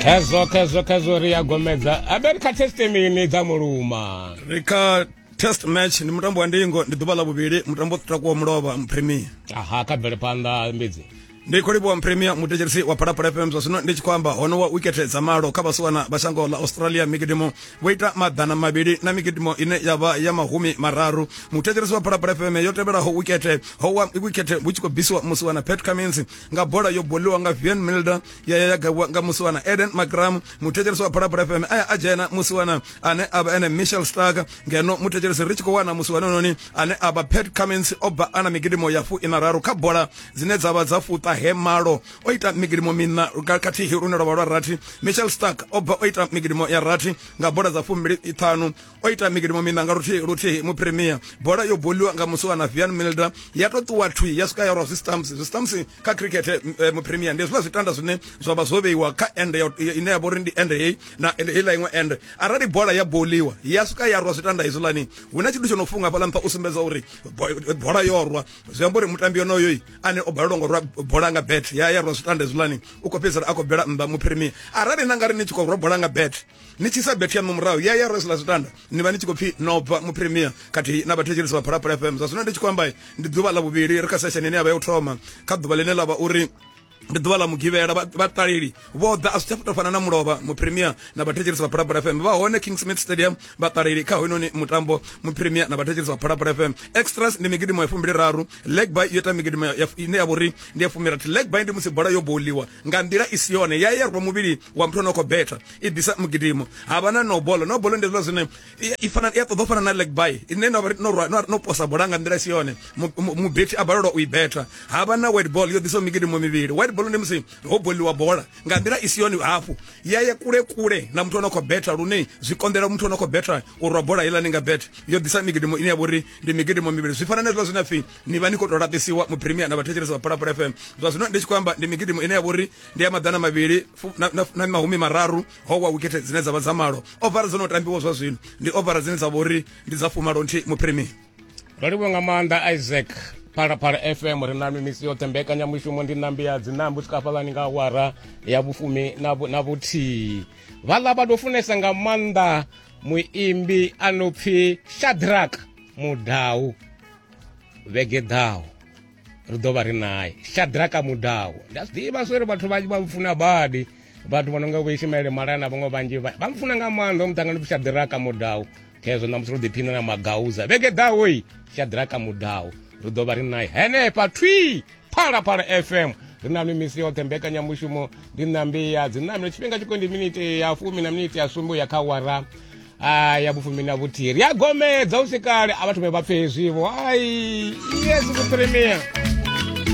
khezwo khezwo khezwo ri ya gomedza aberi kha testimini dza muluma ri kha test match ndi mutambo wa ndingo ndi ḓuvha ḽa vhuvhili mutambo takuwa mulovha mpremier aha kha bvele phanḓa mbidzi ndi khou livhuwa mpremier mutetsherisi wa phalaphala fm zwa zwino ndi tshi khou amba hono wa wikete dza malo kha vhasiwana vha shango ḽa australia mikidimo vho ita maḓana mavhili na mikidimo ine ya vha ya mahumi mararu mutetsherisi wa phalaphala fm yo tevhelaho wikete ho wa wikete vhu tshi khou bvisiwa musiwana pat cummins nga bola yo boliwa nga vian milder ya ya gaiwa nga musiwana eden magram muthetshelesi wa phalaphala fm aya a dzhena musiwana ane a vha ene michel stark ngeno muthetshelesi ri tshi khou wana musiwana noni ane a vha pat cummins o bva ana migidimo ya fu ina raru kha bola dzine dza vha dza fuṱa he malo o ita migidimo mina khathihi lune lwa vha lwa rathi michel stark o bva o ita migidimo ya rathi nga bola dza fumbili ṱhanu o ita mikilomo mina nga luthihi luthihi mupremier bola yo boliwa nga musi wa na vian milder ya to ṱuwa thwi ya swika ya rwa zwistamps zwistamps kha cricket eh, eh, mupremier ndi zwiḽa zwitanda zwine zwa vha zwo vheiwa kha ende ine ya vha uri ndi ende heyi na heiḽa iṅwe ende arali bola ya boliwa ya swika ya rwa zwitanda hezwiḽani hu na tshithu tsho no funga fhaḽa nṱha u sumbedza uri bola yo rwa zwi amba uri mutambi yonoyoi ane o balelwa ngo rwa bola nga bet ya ya rwa zwitanda hezwiḽani u khou fhedzisela a khou bela nnḓa mupremier arali na nga ri ni tshi khou rwa bola nga bet ni tshi sa bethia no murahu ya ya resla zwitanda ni vha ni tshi khou pfi no bva mu premier khathihi na vhathetshelisi vha phalaphala fm zwa zwino ndi tshi khou amba ndi ḓuvha ḽa vhuvhili ri kha sesheni ine ya vha ya u thoma kha ḓuvha ḽine ḽa vha uri ndi ḓuvha ḽa mugivhela vhaṱaleli vho ḓa a zwi tsha fana na mulovha mupremier na vhathetshelisi vha phalaphala fm vha hone king smith stadium vhaṱaleli kha hoyinoni mutambo mupremier na vhathetshelisi vha phalaphala fm extras ndi migidimo ya fumbili raru leg by yo ita migidimo ine ya vhori ndi ya fumirathi leg by ndi musi bola yo bouliwa nga nḓila i si yone ya ya rwa muvhili wa muthu ane khou betha i ḓisa mugidimo ha vha na no bola no bola ndi zwiḽa zwine i fana i ṱoḓa fana na leg by ine no no no no posa bola nga nḓila si yone mubethi a balelwa u i betha ha vha na white ball yo ḓisa migidimo mivhili white ball ndi musi ho boliwa bola nga nḓila i si yone hafhu ya ye kule kule na muthu ane khou betha lune zwi konḓela muthu ane khou betha u rwa bola iḽa ni nga bet yo ḓisa migidimo ine ya vhori ndi migidimo mivhili zwi fana na zwiḽa zwine pfi ni vha ni khou tou laṱisiwa mu premier na vhathetshelesi vha phalaphala fm zwa zwino ndi tshi khou amba ndi migidimo ine ya vhori ndi ya maḓana mavhili fu- na- na- na mahumi mararu ho wa wikete dzine dza vha dza malo ovara dzo no tambiwa zwa zwino ndi ovara dzine dza vha uri ndi dza fumalo nthihi muphirimini ro livhuwa nga maanḓa isaac phalaphala fm ri na mimisi yoṱhe mbekanyamushumo ndi nambi ya dzinambi u swika hafhalani nga awara ya vhufumi na vhu- na vhuthihi vhaḽa vha tou funesa nga maanḓa muimbi a no pfi shadrak mudau vhege ḓaho ri ḓo vha ri naye shadraka mudawo ndi a zwi ḓivha zwo ri vhathu vhanzhi vha mfuna badi vhathu vha no nga vho ishimaele malaya na vhaṅwe vhanzhi vha mfuna nga maanḓa o muṱangano pfi shadraka mudawo khezwo namusi ro ḓiphina na magauza vhege ḓaho i shadraka mudawo ri ḓo vha ri naye henefha thwi phalaphala fm ri na mimisi yoṱhe mbekanyamushumo ndi nambi ya dzinamelo tshifhinga tshiko ndi miniti ya fumi na miniti ya sumbe ya kha wara ai ya vhufumi na vhuthiri ya gomedza u si kale a vha thome vha pfe hezwivo ai yes vhutremia